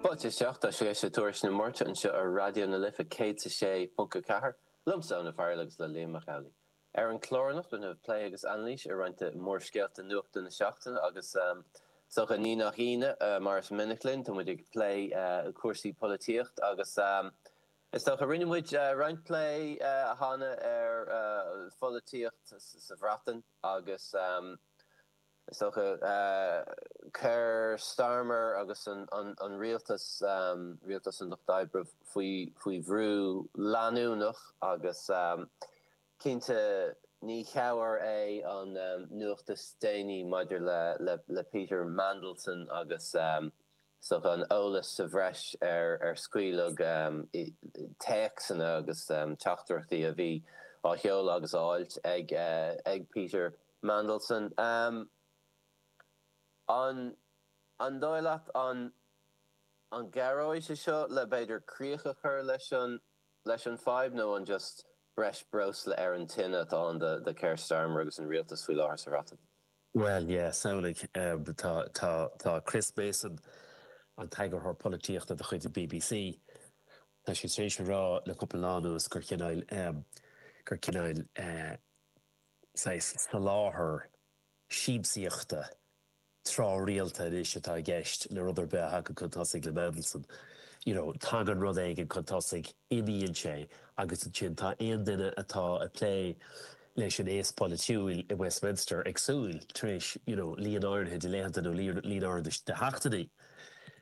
Fáilte isteach, tá sibh ag éisteacht le Tuairisc na Máirte anseo ar Raidió na Life 106.4, liomsa, Eoin Ó Fearghail agus le Liam Mac Amhlaigh. Ar an chlár anocht déanfaidh muid plé agus anailís ar roinnt de mhórscéalta nuachta na seachtaine agus is dócha, ní nach ionadh, mar is minic linn, tá muid ag plé cúrsaí polaitíochta agus is dócha, rinne muid roinnt plé cheana ar pholaitíocht sa Bhreatain agus. Is dócha Keir Starmer agus an rialtas, rialtas an Lucht Oibre, faoi bhrú leanúnach agus cinnte ní cabhair é an nuacht is déanaí maidir le Peter Mandelson agus Sin an t-eolas sa bhreis ar ar scaoileadh téacsanna agus teachtaireachtaí a bhí á sheoladh agus á fháilt ag Peter Mandelson. An dóigh leat an gcabhróidh sé seo le b'fhéidir críoch a chur leis an fhadhb nó an just breis breosla ar an tine atá ann do Keir Starmer agus an rialtas faoi láthair sa Bhreatain? Bhuel, yeah, samhlaím, tá, tá, tá Chris Mason, an t-eagarthóir polaitíochta de chuid an BBC, tá sé tar éis a rá le cúpla lá anuas gur cineáil, gur cineáil, saghas soláthar siamsaíochta tráthrialta anois atá i gceist le rud ar bith a thagann chun tosaigh le Mandelson. You know, tagann rud éigin chun tosaigh. imíonn sé agus ansin tá aon duine atá ag plé leis an aos polaitiúil i Westminster ag súil, tar éis you know líon áirithe de laethanta nó líon áirithe de sheachtainí,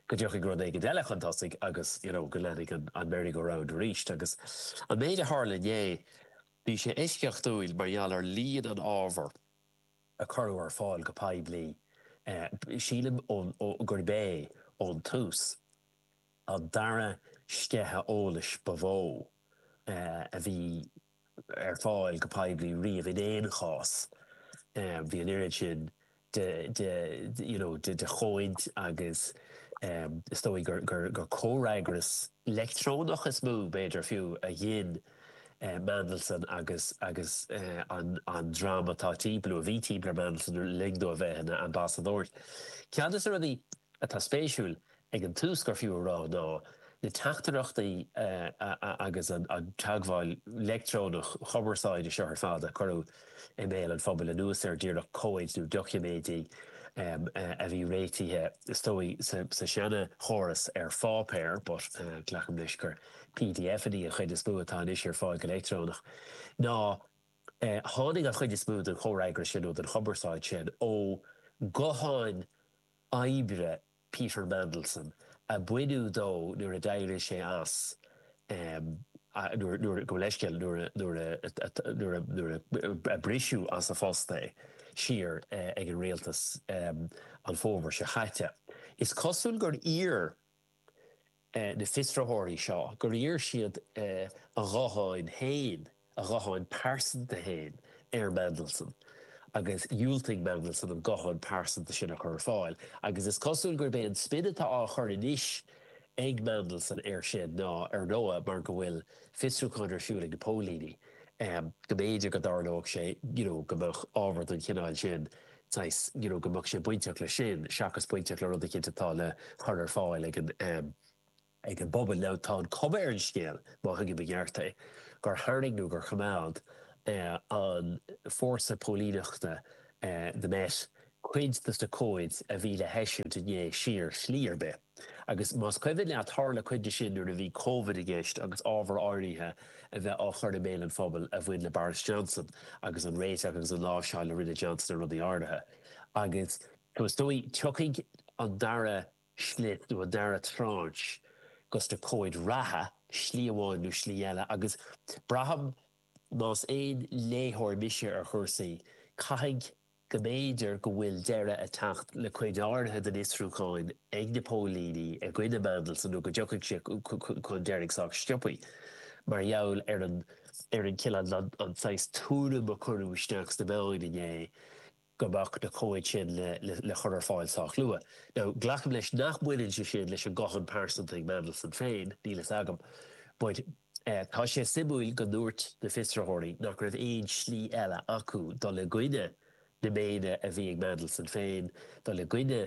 go dtiocfaidh rud éigin eile chun tosaigh agus you know go leanfaidh an merry-go-round arís. Agus an méid a tharla inné, bhí sé eisceachtúil mar gheall ar líon an ábhar a cuireadh ar fáil go poiblí sílim gurb é ón tús. An dara sceitheadh eolais ba mhó a bhí ar fáil go poiblí riamh in aon chás, bhí an oiread sin de you know de chomhaid agus is dóigh gur comhfhreagras leictreonach is mó, b'fhéidir fiú, a ghin Mandelson agus agus an dream atá timpeall nó a bhí timpeall ar Mandelson le linn dó a bheith ina ambasadóir. Ceann de na rudaí atá spéisiúil ag an tús gur fiú a rá ná na teachtaireachtaí agus an teagmháil leictreonach chumarsáide seo ar fad a cuireadh i mbéal an phobail anuas air díreach, comhaid nó doiciméidí a bhí réitithe is dóigh sa seana chóras ar pháipéar but glacaim leis gur PDFannaí an chuid is mó atá anois ar fáil go leictreonach. Nár tháinig an chuid is mó den chomhfhreagras sin nó den chumarsáid sin ó ghutháin oibre, Peter Mandelson a baineadh de nuair a d'éirigh sé as nuair, gabh mo leithscéal, nuair a briseadh as a phost é siar ag an Rialtas an fómhar seo chaite. Is cosúil gur iarr. na fiosraitheoirí seo gur iarr siad a ghuthán féin, a ghuthán pearsanta féin, ar Mandelson agus dhiúltaigh Mandelson an guthán pearsanta sin a chur ar fáil agus is cosúil gurb é an spin atá á chur anois ag Mandelson air sin ná, ar ndóigh, mar go bhfuil fiosrúchán ar siúl ag na póilíní, go mb'fhéidir go dtarlódh sé, you know, go mbeadh ábhar den chineál sin saghas, you know go mbeadh sé bainteach leis sin seachas bainteach le rud eicínt atá le cur ar fáil ag an, ag an bpobal. Now tá an cuma ar an scéal, má thuigim i gceart é, gur tharraing nó gur choimeád an fórsa póilíneachta, the Met, cuid dos na comhaid a bhí le heisiúint inné siar, slí ar bith. Agus más cuimhin leat tharla cuid de sin nuair a bhí Covid i gceist agus ábhar áirithe a bheith á chur i mbéal an phobail a bhain le Boris Johnson agus an réiteach agus an láimhseáil a rinne Johnson ar rudaí áirithe. Agus is dócha tiocfaidh an dara slip nó an dara tranche dos na comhaid reatha, slí amháin nó slí eile. Agus braithim más aon léitheoir mise ar chúrsaí, caithfidh go mb'fhéidir go bhfuil deireadh ag teacht le cuid áirithe den fhiosrúchán ag na póilíní i gcoinne Mandelson nó go dtiocfaidh sé chun deiridh sách sciobtha mar gheall ar an ar an chill an saghas tuairim a cuireadh isteach sna meáin inné go mbeadh na comhaid sin le le chur ar fáil sách luath. Now glacaim leis nach mbaineann sé sin leis an guthán pearsanta ag Mandelson féin, níl a fhios agam but, Tá sé suimiúil go ndúirt na fiosraitheoirí nach raibh aon slí eile acu dul i gcoinne na méine a bhí ag Mandelson féin, dul i gcoinne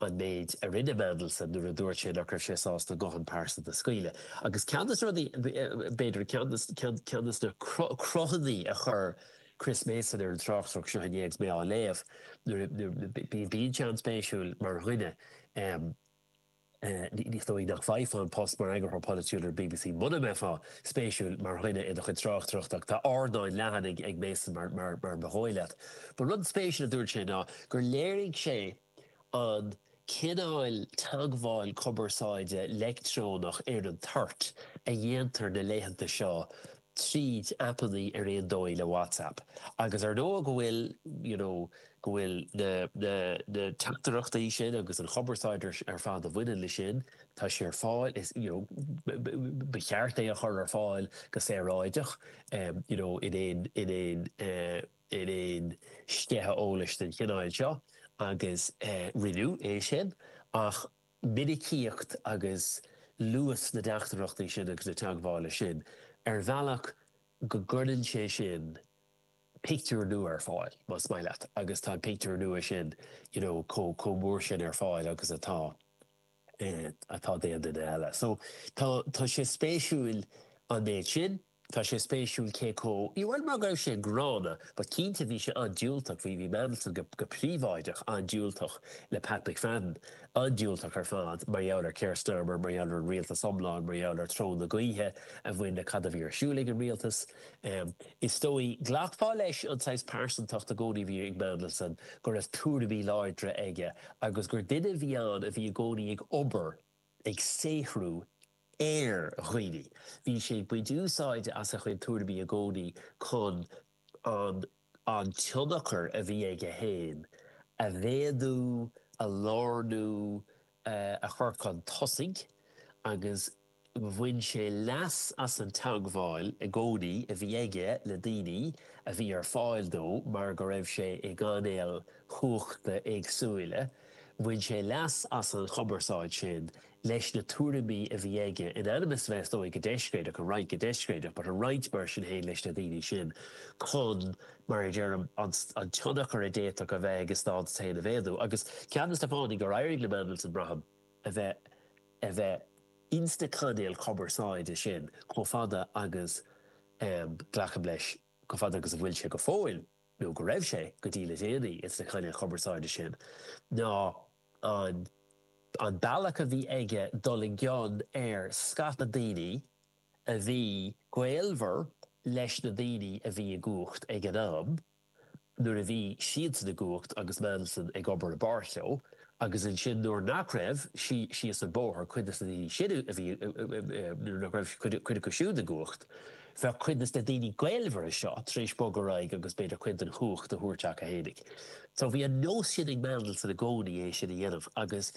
an méid a rinne Mandelson nuair a dúirt sé nach raibh sé sásta an guthán pearsanta a scaoileadh. Agus ceann de na rudaí, b'fhéidir, ceann de na cruthanna a chuir Chris Mason ar an tráchtaireacht seo inné agus mé á léamh, bíonn sé an-spéisiúil mar dhuine, Is dóigh nach bhfaighfeá an post mar eagarthóir polaitiúil ar bbc muna mbeifeá spéisiúil mar dhuine i do chuid tráchtaireachta, ach tá ardán leathan ag Mason mar ba dhóigh leat. An rud spéisiúil a dúirt sé ná gur léirigh sé an cineál teagmháil cumarsáide leictreonach ar an toirt a dhéantar na laethanta seo, tríd aipeanna ar ndóigh le WhatsApp agus ar ndóigh go bhfuil you know go bhfuil na na na teachtaireachtaí sin agus an chumarsáid ar fad a bhaineann le sin tá sé ar fáil is you know ba cheart é a chur ar fáil go saoráideach you know in aon in aon in aon sceitheadh eolais den chineál seo agus rinneadh é sin ach minicíocht agus luas na dteachtaireachtaí sin agus na teagmhála sin ar bhealach go gcuireann sé sin pictiúr nua ar fáil, más maith leat, agus tá an pictiúr nua sin you know chomh mór sin ar fáil agus atá atá d'aon duine eile. So tá sé spéisiúil an méid sin. Tá sé spéisiúil cé comh, ní bhuel mar go raibh sé gránna but cinnte bhí sé an-diúltach, bhí, bhí Mandelson go, go príobháideach an-diúltach le Pat McFadden, an-diúltach ar fad mar gheall ar Keir Starmer, mar gheall ar an rialtas iomlán, mar gheall ar treo na gaoithe a bhain le cad a bhí ar siúl ag an rialtas. Is dóigh, ghlacfá leis an saghas pearsantachta i gcónaí a bhí ag Mandelson, go raibh tuairimí láidre aige agus gur duine a bhí ann a bhí i gcónaí ag obair, ag saothrú ar dhaoine. Bhí sé ag baint úsáide as a chuid tuairimí i gcónaí chun an an tionchar a bhí aige féin a mhéadú, a lárnú, a chur chun tosaigh agus bhain sé leas as an teagmháil i gcónaí a bhí aige le daoine a bhí ar fáil dó mar go raibh sé i gcainéil chumhachta éagsúile Bhain sé leas as an gcumarsáid sin leis na tuairimí a bhí aige, in ainm is bheith, is dóigh, go deiscréideach, a roinnt, go deiscréideach, but a roinnt, mar sin féin, leis na daoine sin, chun, mar a deirim, an tionchar a d'fhéadfadh a bheith aige, a stádas féin a mhéadú. Agus ceann dos na fáthanna gur éirigh le Mandelson, braithim, a bheith, a bheith ins na cainéil chumarsáide sin chomh fada agus, em, glacaim leis, chomh fada agus a bhfuil sé go fóill, nó go raibh sé go dtí le déanaí ins na cainéil chumarsáide sin, ná an an bealach a bhí aige dul i gcion ar scata daoine a bhí gaolmhar leis na daoine a bhí i gcumhacht ag an am nuair a bhí siadsan i gcumhacht agus Mandelson ag obair i bpáirt leo. Agus ansin nuair nach raibh, síos an bóthar, cuid dos na daoine sin a bhí, nuair nach raibh cuid acu siúd i gcumhacht, bheadh cuid dos na daoine gaolmhara seo tar éis bogadh ar aghaidh agus b'fhéidir cuid den chumhacht a thabhairt chucu fhéinig. So bhí an nós sin ag Mandelson i gcónaí é sin a dhéanamh agus,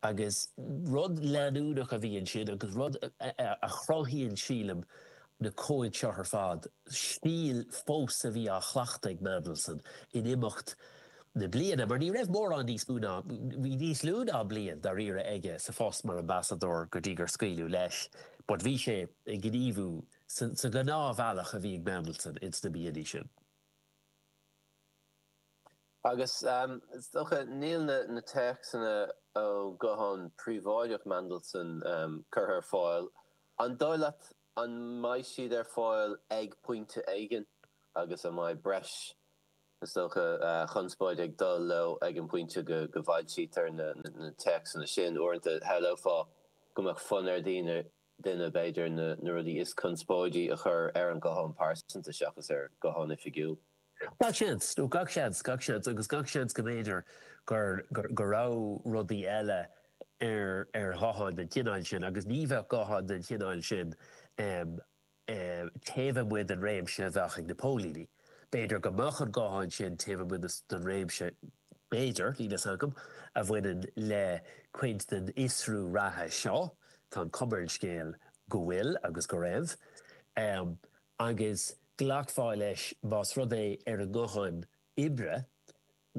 agus rud leanúnach a bhí ansin agus rud a chruthaíonn sílim na comhaid seo ar fad, stíl fós a bhí á chleachtadh ag Mandelson in imeacht, na bliana mar ní raibh mórán níos mó ná, bhí níos lú ná bliain dáiríre aige sa phost mar ambasadóir go dtí gur scaoileadh leis but bhí sé ag gníomhú sa ghnáthbhealach a bhí ag Mandelson ins na míonna sin. Agus is dócha, níl na téacsanna ó ghuthán príobháideach Mandelson curtha ar fáil, an dóigh leat an mbeidh siad ar fáil ag pointe éigin agus an mbeidh breis is dócha, conspóid ag dul leo ag an bpointe go bhfoilsítear na téacsanna sin. Uaireanta shamhlófá go mbeadh fonn ar dhaoine, duine, b'fhéidir, na rudaí is conspóidí a chur ar an nguthán pearsanta seachas ar ghuthán oifigiúil. Gach seans, nó gach seans, gach seans agus gach seans go mb'fhéidir go raibh rudaí eile ar ghutháin den chineál sin agus ní bheadh gutháin den chineál sin taobh amuigh den réimse a bheadh ag na póilíní. B'fhéidir go mbeadh an guthán sin taobh amuigh den réimse, b'fhéidir, níl fhios agam, a bhaineann le cuid den fhiosrú reatha seo, tá an cuma ar an scéal go bhfuil agus go raibh, agus glacfá leis más rud é ar an nguthán oibre,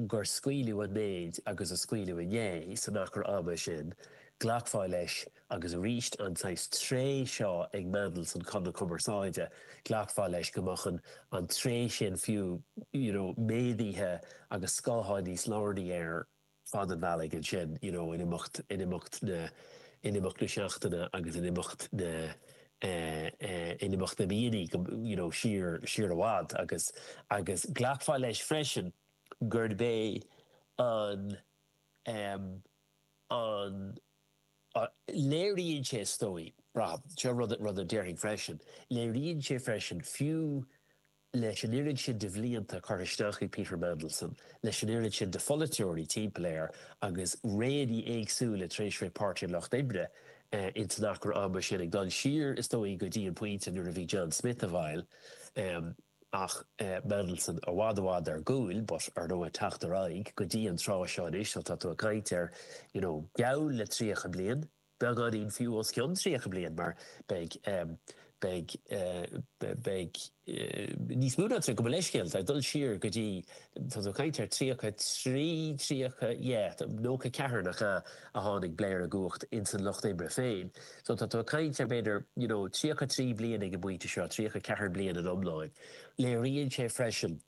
gur scaoileadh an méid agus a scaoileadh inné san achar ama sin, glacfá leis agus arís an saghas tréith seo ag Mandelson, chun na cumarsáide, glacfá leis go mbeadh an an tréith sin fiú you know méadaithe agus scáthán níos lárnaí ar fad an bhealaigh ansin you know in imeacht in imeacht na in imeacht na seachtaine agus in imeacht na eh, in imeacht na míonna, you know, siar, siar i bhfad agus, agus glacfá leis freisin gurb é an, em, an, léiríonn sé is dóigh liom, seo rud, rud a déarfainn freisin, léiríonn sé freisin fiú leis an oiread sin de bhlianta curtha isteach ag Peter Mandelson, leis an oiread sin de pholaiteoirí timpeall air agus réanna éagsúla tar éis a bheith ag Páirtí an Lucht Oibre ins an achar ama sin, ag dul siar is dóigh go dtí an pointe nuair a bhí John Smith i bhfeighil ach Mandelson i bhfad i bhfad ar gcúl but ar ndóigh ag teacht ar aghaidh go dtí an tráth seo anois, tá tú ag caint ar, you know, geall le 30 bliain. Beagáinín fiú os cionn 30 bliain mar beidh, beidh, beidh níos mó ná 30, gabh mo leithscéal, tá, ag dul siar go dtí, tá tú ag caint ar 33, 30, yeah, 94 nach ea a tháinig Blair i gcumhacht ins an lucht oibre féin. So tá tú ag caint ar b'fhéidir, you know, 33 bliain ag an bpointe seo, 34 bliain in iomláin. Léiríonn sé freisin.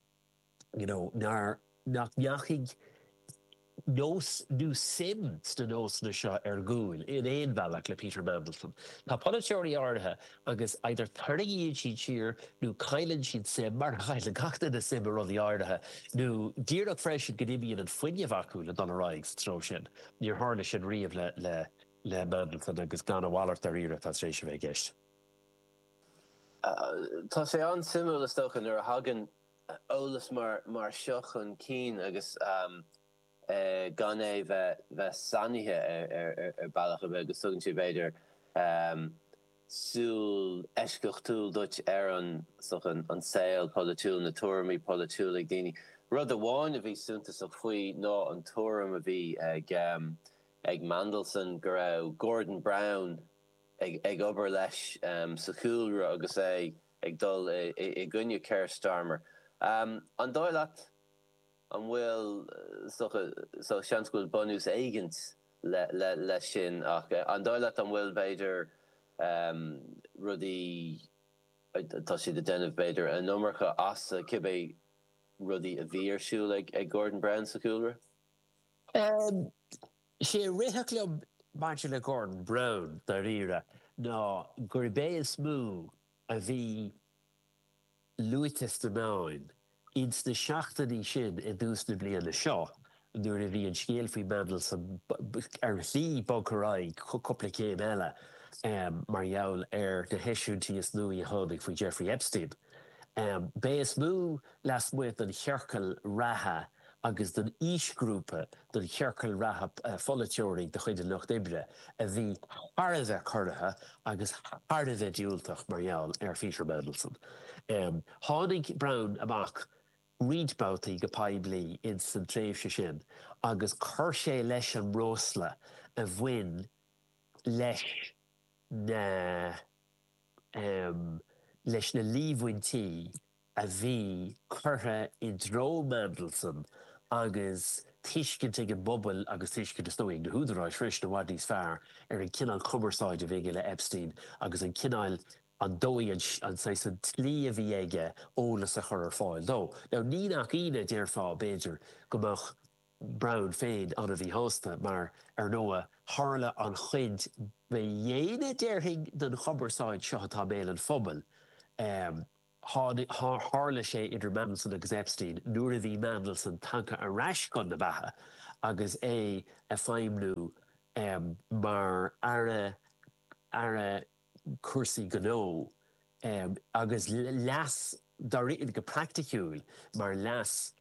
you know, nár, nach ndeachaigh nós nó suim sna nósanna seo ar gcúl in aon bhealach le Peter Mandelson. Tá polaiteoirí áirithe agus either tarraingíonn siad siar nó cailleann siad suim, mar a chailleann gach duine suim i rudaí áirithe, nó díreach freisin go n-imíonn an fuinneamh acu le dul ar aghaidh sa treo sin. Níor tharla sin riamh le, le, le Mandelson agus gurb a mhalairt dáiríre atá tar éis a bheith i gceist. Tá sé an-suimiúil is dócha nuair a thagann eolas mar seo chun cinn agus gan é bheith sannaithe ar bealach ar bith agus tugann sé b'fhéidir súil eisceachtúil duit ar an saol polaitiúil, na tuairimí polaitiúil ag daoine. Rud amháin a bhí suntasach faoi ná an tuairim a bhí ag Mandelson go raibh Gordon Brown ag obair leis sa chúlra agus é ag dul i gcoinne Keir Starmer. An dóigh leat an bhfuil seans go bhfuil bunús éigint leis sin ach an dóigh leat an bhfuil b'fhéidir rudaí atá siad a déanamh b'fhéidir an iomarca as cibé rudaí a bhí ar siúl ag Gordon Brown sa chúlra? Is é rith sé liom maidir le Gordon Brown dáiríre ná gurb é is mó a bhí luaite sna meáin ins na seachtainí sin i dtús na bliana seo nuair a bhí an scéal faoi Mandelson ar shlí bogtha ar aghaidh cúpla céim eile mar gheall ar na heisiúintí is nuaí a tháinig faoi Jeffrey Epstein. B'é is mó lasmuigh den chiorcal reatha agus den aoisghrúpa den chiorcal reatha de pholaiteoirí de chuid an Lucht Oibre a bhí thar a bheith corraithe agus thar a bheith diúltach mar gheall ar Pheter Mandelson. Tháinig Brown amach roinnt babhtaí go poiblí ins san tréimhse sin agus chuir sé leis an mbreosla a bhain leis na leis na líomhaintí a bhí curtha i dtreo Mandelson agus tuiscint ag an bpobail agus tuiscint, is dóigh liom, ag na húdaráis freisin i bhfad níos fearr ar an cineál cumarsáid a bhí aige le Epstein agus an cineál, ar ndóigh, an, an saghas, an tslí a bhí aige eolas a chur ar fáil dó. Now ní nach ionadh déarfá, b'fhéidir, go mbeadh Brown féin an-mhíshásta mar, ar ndóigh, tharla an chuid ba dhéine, déarfainn, den chumarsáid seo atá i mbéal an phobail, eh, Tharla sé idir Mandelson agus Epstein nuair a bhí Mandelson tagtha ar ais chun na beatha agus é ag feidhmniú mar aire aire cúrsaí gnó agus leas dáiríre go praiticiúil mar leas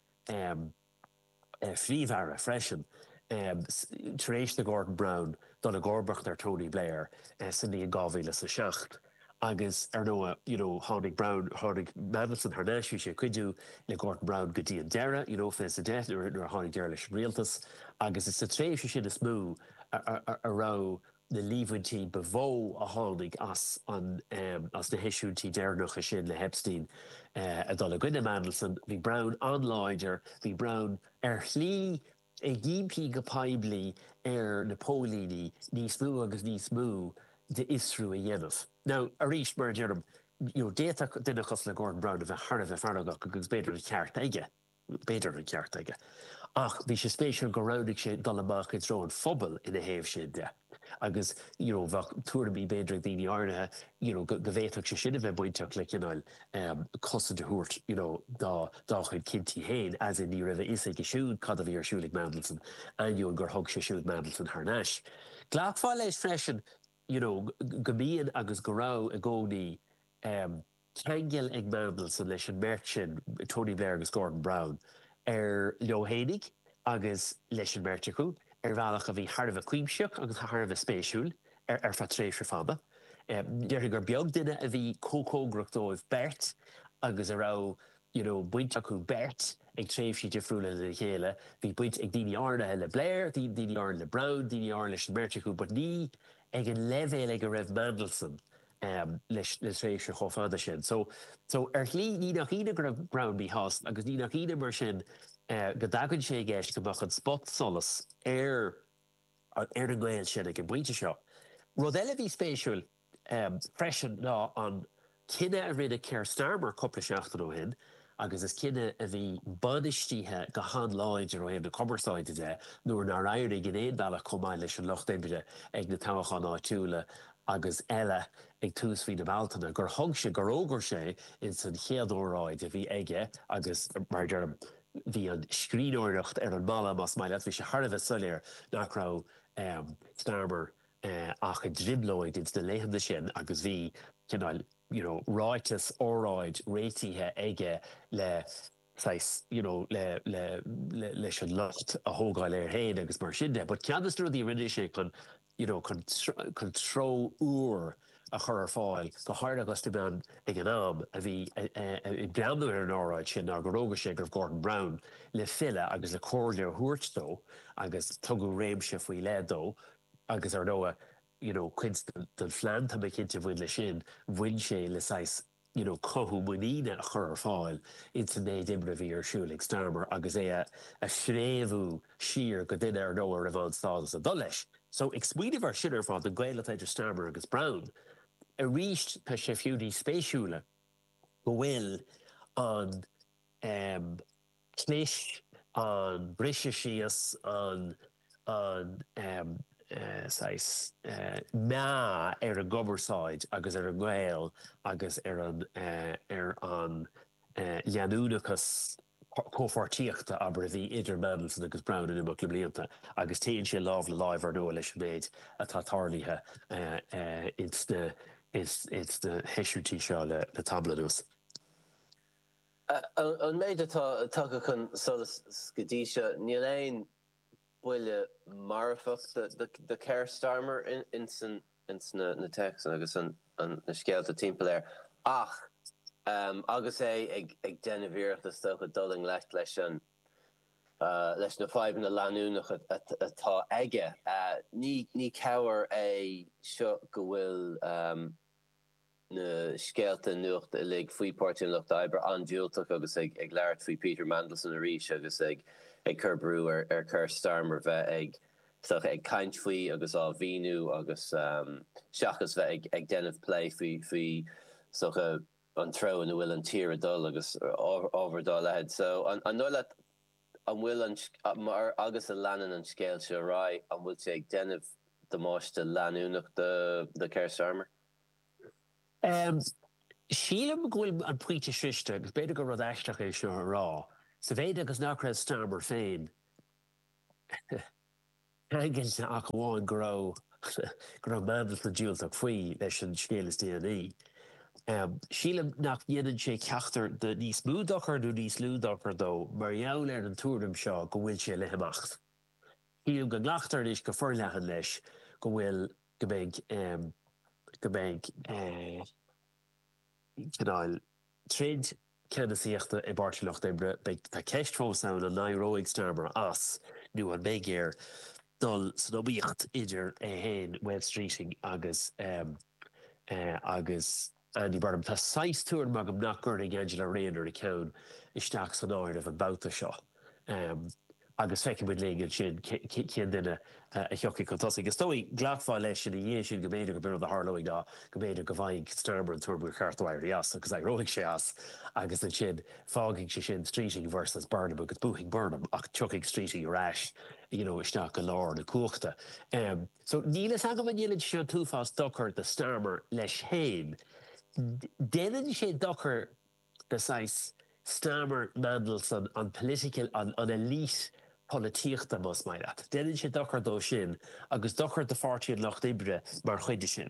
Phríomh-Aire freisin tar éis do Gordon Brown dul i gcomharbacht ar Tony Blair sa mbliain 2007 agus ar ndóigh you know tháinig Brown, tháinig Mandelson thar n-ais, bhí sé ag cuidiú le Gordon Brown go dtí an deireadh you know fiche is a deich nuair a tháinig deireadh leis an rialtas agus is sa tréimhse sin is mó a raibh na líomhaintí ba mhó a tháinig as na as na heisiúintí deireanacha sin le hEpstein a dhul i gcoinne Mandelson. Bhí Brown an-láidir. Bhí Brown, ar shlí, ag impí go poiblí ar na póilíní níos mó agus níos mó d'fhiosrú a dhéanamh. Now, arís, mar a deirim, d'fhéadfadh duine cosúil le Gordon Brown a bheith thar a bheith feargach agus b'fhéidir an ceart aige. B'fhéidir an ceart aige, ach bhí sé spéisiúil gur roghnaigh sé dul amach i dtreo an phobail ina thaobh sin de agus you know bheadh tuairimí b'fhéidir ag daoine áirithe you know go bhféadfadh sé sin a bheith bainteach le cineál cosaint a thabhairt you know dá chuid cinntí féin as in ní raibh a fhios aige siúd cad a bhí ar siúl ag Mandelson ainneoin gur thug sé siúd Mandelson thar n-ais. Glacfá leis freisin you know go mbíonn agus go raibh i gcónaí. ceangal ag Mandelson leis an mbeirt sin, Tony Blair agus Gordon Brown, ar leo fhéinig agus leis an mbeirt acu ar bhealach a bhí thar a bheith cuimsitheach agus thar a bheith spéisiúil ar feadh tréimhse fada. Déarfainn gur beag duine a bhí chomh cóngarach dóibh beirt agus a raibh you know baint acu beirt ag tréimhsí difriúla lena chéile. Bhí baint ag daoine áirithe le Blair, daoine áirithe le Brown, daoine áirithe leis an mbeirt acu but ní ag an leibhéal ag a raibh Mandelson le tréimhse chomh fada sin so so ar shlí ní nach ionadh go raibh Brown míshásta agus ní nach ionadh mar sin go dtagann sé i gceist go mbeadh an spotsolas ar ar an ngaol sin ag an bpointe seo. Rud eile a bhí spéisiúil freisin ná an cinneadh a rinne Keir Starmer cúpla seachtain ó shin agus is cinneadh a bhí bainistithe go han-láidir ó thaobh na cumarsáide de nuair nár éirigh in aon bhealach chomh maith leis an Lucht Oibre ag na toghcháin áitiúla agus eile ag tús mhí na Bealtaine gur thug sé, gur fhógair sé ins an chéad óráid a bhí aige agus mar a deirim bhí an scríbhneoireacht ar an mballa más maith leat, bhí sé thar a bheith soiléir nach raibh Starmer i dtrioblóid ins na laethanta sin agus bhí cineál you know ráiteas, óráid réitithe aige le saghas you know le le le leis an locht a thógáil air féin agus mar sin de but ceann de na rudaí a rinne sé chun you know chun treo úr a chur ar fáil go háirithe agus na meáin ag an am a bhí ag breathnú ar an óráid sin ná gur roghnaigh sé go raibh Gordon Brown le filleadh agus le comhairle a thabhairt dó agus tugadh réimse faoi leith dó agus ar ndóigh you know cuid den phlean tá mé cinnte a bhain leis sin, bhain sé le saghas you know cothú muiníne a chur ar fáil ins an méid oibre a bhí ar siúl ag Starmer agus é a phréamhú siar go duine ar ndóigh a raibh an-stádas ag dul leis. So ag smaoineamh ar sin ar fad, an gaol atá idir Starmer agus Brown, arís tá sé fiú níos spéisiúla go bhfuil an, em, clis an briseadh síos, an saghas meá ar an gcumarsáid agus ar an ngaol agus ar an leanúnachas comhpháirtíochta, abair, a bhí idir Mandelson agus Brown in imeacht na mblianta agus téann sé lámh le láimh, ar ndóigh, leis an méid atá tarlaithe ins na heisiúintí seo le tamall anuas. An méid atá tagtha chun solais go dtí seo, níl aon buille marfach do Keir Starmer ins na téacsanna agus na scéalta timpeall air ach agus é ag déanamh iarrachta is dócha dul i ngleic le an leis na fadhbanna leanúnacha atá aige. Ní cabhair é seo go bhfuil. na scéalta nuachta uilig faoi Páirtí an Lucht Oibre an-diúltach agus ag labhairt faoi Peter Mandelson arís agus ag cur brú ar Keir Starmer bheith ag ag caint faoi agus á mhíniú agus seachas bheith ag ag déanamh plé faoi faoi an treo ina bhfuil an tír ag dul agus ábhair dá leithéid. So an dóigh leat an bhfuil agus a leanann an scéal seo ar aghaidh an bhfuil sé ag déanamh damáiste leanúnach do Keir Starmer? Sílim go bhfuil an pointe sroichte agus b'fhéidir gur rud aisteach é seo le rá, sa mhéid agus nach raibh Starmer féin ceangailte ach amháin go raibh go raibh Mandelson diúltach faoi leis an scéal is déanaí. Sílim nach ndéanann sé ceachtar de níos mó dochair nó níos lú dochair dó mar gheall ar an tuairim seo go bhfuil sé le himeacht. Sílim go nglactar anois go foirleathan leis go bhfuil, go mbeidh, go mbeidh cineál troid ceannasaíochta i bPáirtí Lucht Oibre. Beidh, tá ceist fós ann an n-éireoidh Starmer as nó an mbeidh air dul san iomaíocht idir é féin, Wes Streeting agus, agus, Andy Burnham, Tá saghas tuairim agam nach gcuirfidh Angela Rayner a ceann isteach san áireamh an babhta seo agus feicfidh muid linn ansin cén duine a thiocfaidh chun tosaigh. Is dóigh, glacfá leis sin ina dhiaidh sin go mb'fhéidir gurb é rud a tharlóidh ná go mb'fhéidir go bhfaighidh Starmer an tuairim gur cheart dó éirí as agus éireoidh sé as agus ansin fágfaidh sé sin Streeting versus Burnham agus buafaidh Burnham ach tiocfaidh Streeting ar ais you know isteach i lár na cumhachta. So níl fhios agam an ndéanann sé seo an t-uafás dochar do Starmer leis féin. Déanann sé dochar do saghas Starmer, Mandelson, an political, an elite polaitíochta más maith leat. Déanann sé dochar dó sin agus dochar do Pháirtí an Lucht Oibre mar chuid de sin.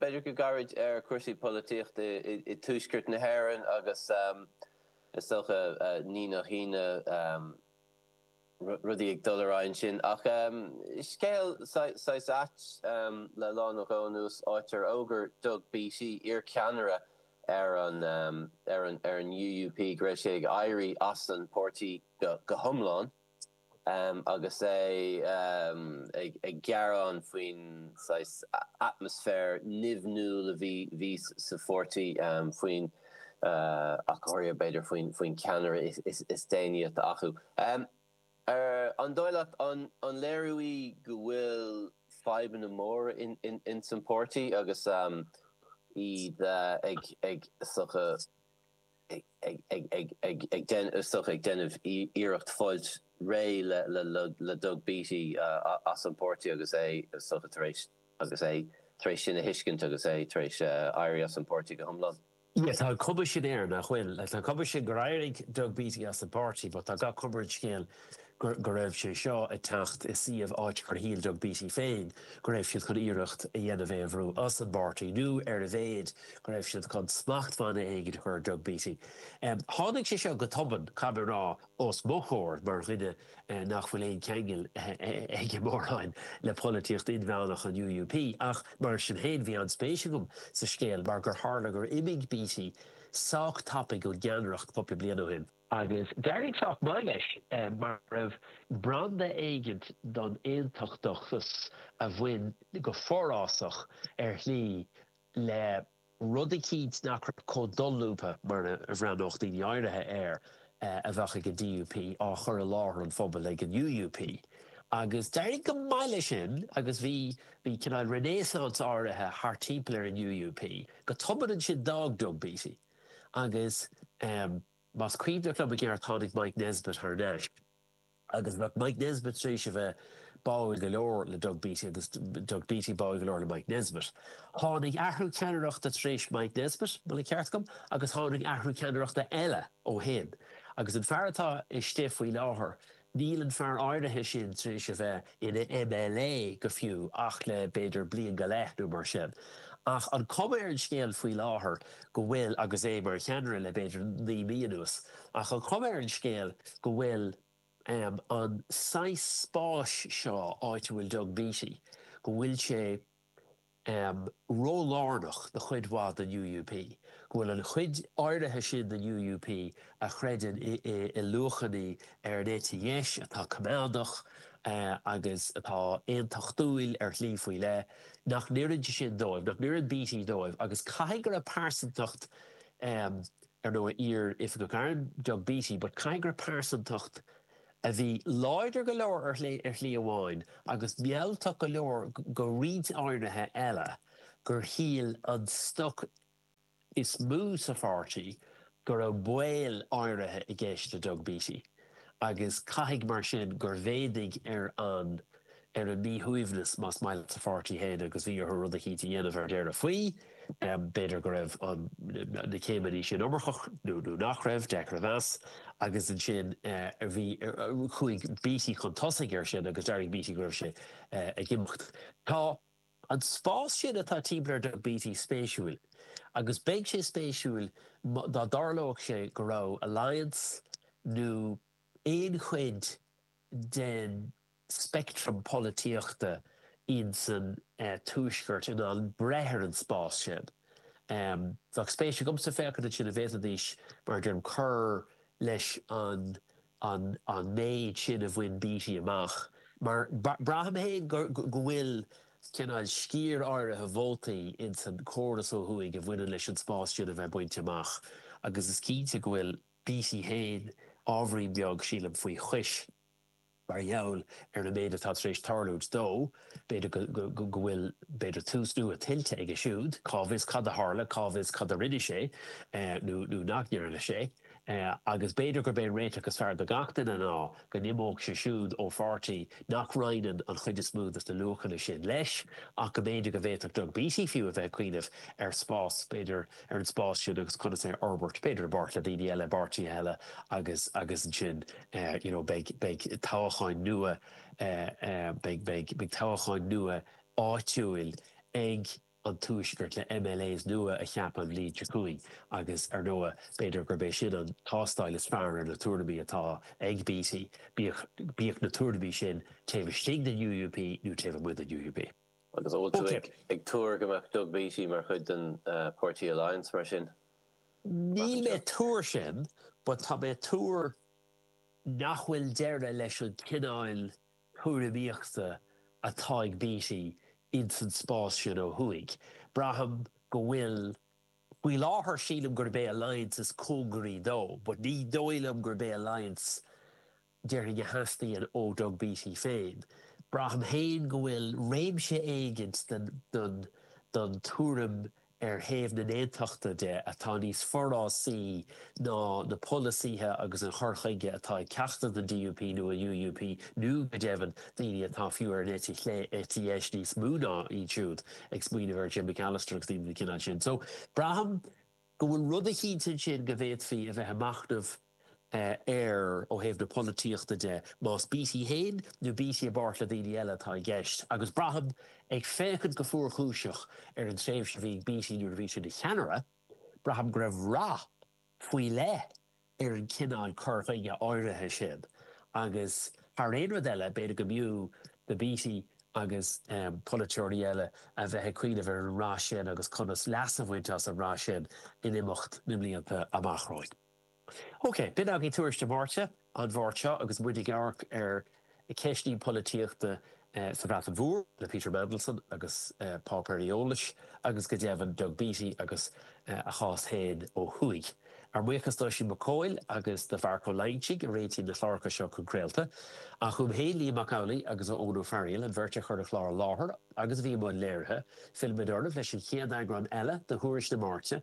B'fhéidir go gairid ar cúrsaí polaitíochta i Tuaisceart na hÉireann agus is dócha ní nach ionadh rudaí ag dul ar aghaidh ansin. Ach scéal saghas ait le lá nó dhó anuas áit ar fhógair Doug Beattie, iarcheannaire ar an ar an UUP go raibh sé ag éirí as an páirtí go hiomlán. Agus é ag gearán faoin saghas atmaisféar nimhniúil a bhí sa pháirtí, faoin aicearra, b'fhéidir, faoin cheannaire is déanaí atá acu, an dóigh leat, an léiriú é go bhfuil fadhbanna móra ins an pháirtí agus iad ag sucadh? ag isteach ag déanamh iarracht fáilt réidh le Doug Beattie as an bpáirtí agus é tar éis sin a thuiscint agus é tar éis éirí as an bpáirtí go hiomlán. Tá an chuma sin air nach bhfuil. Tá an chuma sin gur éirigh Doug Beattie as an bpáirtí, but tá gach cuma ar an scéal go raibh sé seo ag teacht i suíomh áit gur shíl Doug Beattie féin go raibh siad chun iarracht a dhéanamh é a bhrú as an bpáirtí nó, ar a laghad, go raibh siad chun smachtbhanna éigin a chur ar Doug Beattie. Tháinig sé seo go tobann, caithfidh mé a rá, ó mo thaobh mar dhuine nach bhfuil aon cheangal aige mórán le polaitíocht inmheánach an UUP, ach mar sin féin bhí an-spéis agam sa scéal mar gur tharla gur imigh Beattie sách tapaidh ón gceannaireacht cúpla bliain ó shin. Agus d'éirigh sách maith leis mar go raibh branda éigint den aontachtachas a bhí forásach ar shlí le rud eicínt nach raibh chomh dolúbtha, mar a bhreathnódh daoine áirithe air, a bheadh ag an DUP á chur i láthair an phobail ag an UUP. Agus d'éirigh go maith leis sin agus bhí cineál renaissance áirithe thart timpeall ar an UUP. Go tobann ansin d'fhág Doug Beattie. Agus más cuimhin liom i gceart tháinig Mike Nesbitt thar n-ais agus bheadh Mike Nesbitt tar éis a bheith báúil go leor le Doug Beattie agus Doug Beattie báúil go leor le Mike Nesbitt. Tháinig athrú ceannaireachta tar éis Mike Nesbitt, má tá an ceart agam, agus tháinig athrú ceannaireachta eile ó shin agus an fear atá istigh faoi láthair, Níl an fear áirithe sin tar éis a bheith ina MLA go fiú ach le b'fhéidir bliain go leith nó mar sin, ach an cuma ar an scéal faoi láthair go bhfuil, agus é mar cheannaire le b'fhéidir naoi mí anuas, ach an chuma ar an scéal go bhfuil an saghas spáis seo, áit a bhfuil Doug Beattie, go bhfuil sé. ró-lárnach do chuid mhaith den UUP, go bhfuil an chuid áirithe sin den UUP a chreideann i luachannaí ar an eite dheis atá coimeádach agus atá aontachtúil ar shlí faoi leith, nach n-oireann sé sin dóibh, nach n-oireann Beattie dóibh agus caithfidh go raibh pearsantacht ar ndóigh, iar-oifigeach airm, Doug Beattie, but caithfidh go raibh pearsantacht a bhí láidir go leor ar shlí amháin agus mealltach go leor do roinnt áirithe eile gur shíl an stoc is mó sa pháirtí go raibh baol áirithe i gceist le Doug Beattie. agus caithfidh mar sin gur mhéadaigh ar an ar an míshuaimhneas, más maith leat, sa pháirtí féin agus bhí orthu rud eicínt a dhéanamh ar deireadh faoi. B'fhéidir go raibh na céimeannaí sin iomarcach nó nó nach raibh, deacair a mheas, agus ansin bhí chuaigh Beattie chun tosaigh ar sin agus d'fhógair Beattie go raibh sé ag imeacht. Tá. An spás sin atá timpeall ar Doug Beattie spéisiúil agus bheadh sé spéisiúil dá dtarlódh sé go raibh Alliance nó aon chuid den speictream polaitíochta insa Tuaisceart in ann breith ar an spás sin. Bheadh spéis agamsa féachaint ansin an bhféadfaidís, mar a deirim, cur leis an an méid sin a bhain Beattie amach, mar braithim féin go bhfuil cineál sciar áirithe vótaí ins an córas ó thuaidh a bhaineann leis an spás sin a bheith bainte amach agus is cinnte go bhfuil Beattie féin ábhairín beag, sílim, faoi chois mar gheall ar an méid atá tar éis tarlúint dó. B'fhéidir go bhfuil, b'fhéidir, tús nua tuillte aige siúd, cá bhfios cad a tharla, cá bhfios cad a rinne sé nó nach ndearna sé. agus b'fhéidir gurb é an réiteach is fearr do gach duine ná go n-imeodh sé siúd ó pháirtí nach roinneann an chuid is mó de na luachanna sin leis, ach go mb'fhéidir go bhféadfadh Doug Beattie fiú a bheith ag cuimhneamh ar an spás, b'fhéidir, ar an spás sin agus conas é a fhorbairt, b'fhéidir i bpáirt le daoine eile, i bpáirtithe eile agus agus ansin you know beidh beidh toghacháin nua beidh beidh beidh toghacháin nua áitiúil ag an Tuaisceart le MLAs nua a cheapadh an bhliain seo chugainn agus, ar ndóigh, b'fhéidir gurb é sin an tástáil is fearr ar na tuairimí atá ag Beattie, bíodh na tuairimí sin taobh istigh den UUP nó taobh amuigh den UUP. Agus an bhfuil tú ag tuar go mbeadh Doug Beattie mar chuid den páirtí Alliance mar sin? Níl mé ag tuar sin, but tá mé ag tuar nach bhfuil deireadh leis an gcineál tuairimíochta atá ag Beattie ins an spás sin ó thuaidh. Braithim go bhfuil, faoi láthair sílim gurb é Alliance is cóngaraí dó but ní dóigh liom gurb é Alliance déarfainn a theastaíonn ó Doug Beattie féin. Braithim féin go bhfuil réimse éigint den tuairim ar thaobh na nAontachtaithe de, atá níos forásaí ná na polasaithe agus an cur chuige atá ag ceachtar den DUP nó an UUP, nó, go deimhin, daoine atá fiú ar an eite chlé, eite dheis níos mó ná iad siúd, ag smaoineamh ar Jim Allister agus daoine den chineál sin. So, braithim go bhfuil rud eicínt ansin go bhféadfaí a bheith ag machnamh. air ó thaobh na polaitíochta de, más Beattie féin nó Beattie i bpáirt le daoine eile atá i gceist, agus braithim, ag féachaint go fuarchúiseach ar an tréimhse a bhí ag Beattie nuair a bhí sé ina cheannaire, braithim go raibh rath faoi leith ar an chineál cur chuige áirithe sin agus thar aon rud eile b'fhéidir go mb'fhiú do Beattie agus polaiteoirí eile a bheith ag cuimhneamh ar an rath sin agus conas leas a bhaint as an rath sin in imeacht na mblianta amach romhainn. Ok, b'in agaibh Tuairisc na Máirte an Mháirt seo agus muid ag amharc ar cheisteanna polaitíochta sa Bhreatain Mhór le Peter Mandelson agus páipéir eolais agus go deimhin Doug Beattie agus a chás féin ó thuaidh. Ár mbuíochas d'Oisín Mac Cóil agus do Mharc Ó Loingsigh a réitíonn na cláracha seo chun craolta, ach uaim féin, Liam Mac Amhlaigh agus Eoin Ó Fearghaíl, an bheirt a chuir an clár i láthair agus a bhí i mbun léirithe. Fillfimid oraibh leis an chéad eagrán eile de Thuairisc na Máirte.